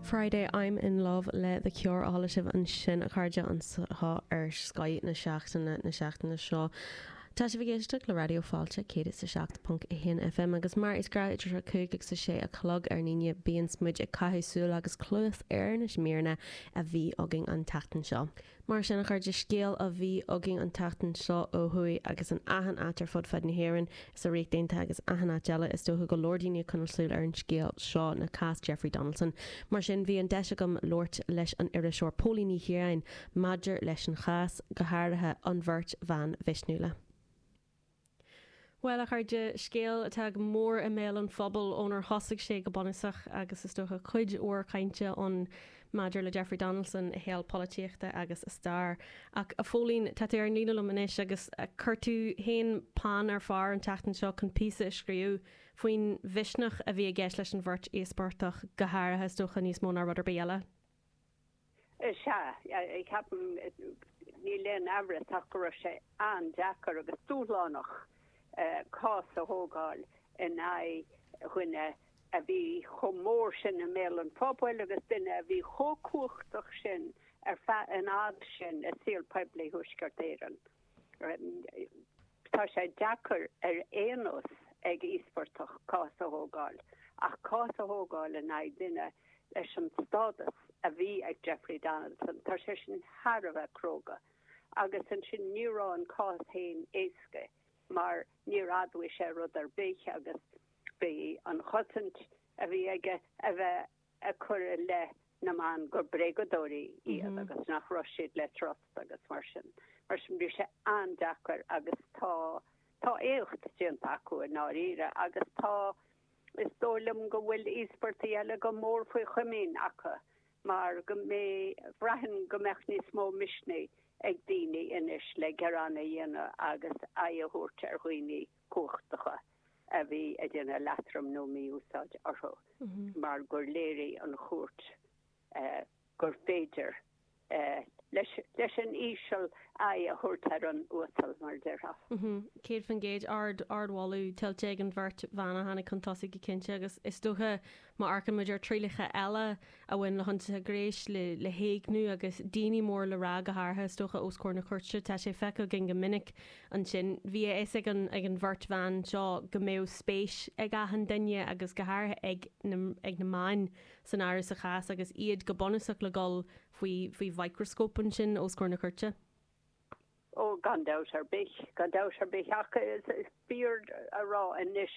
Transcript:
Friday I'm in love le The Cure á chloisteáil ansin a chairde anseo ar Scoth na seachtaine na seachtaine seo. Tá sibh ag éisteacht le Raidió Fáilte 107.1 FM agus mar is gnáth idir 5 agus 6 a chlog ar an Aoine bíonns muid ag caitheamh súil agus cluas ar na míreanna a bhí againn an tseachtain seo. Mar sin, a chairde, scéal a bhí againn an tseachtain seo ó thuaidh agus in achan áit ar fud fad na hÉireann is sa Ríocht Aontaithe agus achan áit eile is dócha go leor daoine ag coinneáil súil ar an scéal seo le cás Jeffrey Donaldson. Mar sin, bhí an deis agam labhairt leis an iriseoir Póilín Ní Chiaráin maidir leis an chás, go háirithe an bheirt bhan mhisniúla. Bhuel, a chairde, scéal atá go mór i mbéal an phobail ónar thosaigh sé go bunúsach agus, is dócha, cuid mhór cainte ann maidir le Jeffrey Donaldson, a shaol polaitíochta agus a stair. Ach, a Phóilín, tá tú ar an líne liom anois agus chuir tú féin peann ar phár an tseachtain seo chun píosa a scríobh faoin mhisneach a bhí i gceist leis an bheirt íospartach, go háirithe, is dócha, níos mó ná rud ar bith eile. Is ea, ceapaim. Níl aon amhras ach go raibh sé an-deacair agus dúshlánach cás a thógáil in aghaidh duine a bhí chomh mór sin i mbéal an phobail agus duine a bhí chomh cumhachtach sin ar feadh an fhad sin i saol poiblí Thuaisceart Éireann. Tá sé deacair ar aon nós ag íospartach cás a thógáil, ach cás a thógáil in aghaidh duine leis an stádas a bhí ag Jeffrey Donaldson, tá sé sin thar a bheith cróga. Agus ansin ní raibh an cás féin éasca mar níor admhaigh sé rud ar bith agus bhí an chosaint a bhí aige a bheith ag cur i leith na mban gur bréagadóirí iad agus nach raibh siad le trust agus mar sin. Mar sin bhí sé an-deacair agus tá, tá éacht déanta acu i ndáiríre agus tá, is dóigh liom go bhfuil íospartaigh eile go mór faoi chomaoin acu mar go mbeidh, braithim go mbeadh níos mó misnigh ag daoine anois le gearáin a dhéanamh agus aghaidh a thabhairt ar dhaoine cumhachtacha a bhí ag déanamh leatrom nó mí-úsáid orthu mar gur léirigh an Chúirt gur féidir leis an íseal aghaidh a thabhairt ar an uasal, mar a déarfá. 100%, ard, ardmholadh tuillte ag an bheirt bhan a tháinig chun tosaigh go cinnte agus is dócha Má amharcann muid ar thrialacha eile a bhain le hionsaithe gnéis, le héigniú agus daoine mór le rá go háirithe, is dócha, os comhair na cúirte, tá sé feicthe againn go minic ansin. Bhí a fhios ag an ag an bheirt bhan seo go mbeadh spéis ag achan duine, agus go háirithe ag na ag na meáin, san áireamh sa chás agus iad go bunúsach le dhul faoi faoi mhicreascóp ansin os comhair na cúirte. Ó, gan dabht ar bith. Gan dabht ar bith. Ach is fíor a rá anois.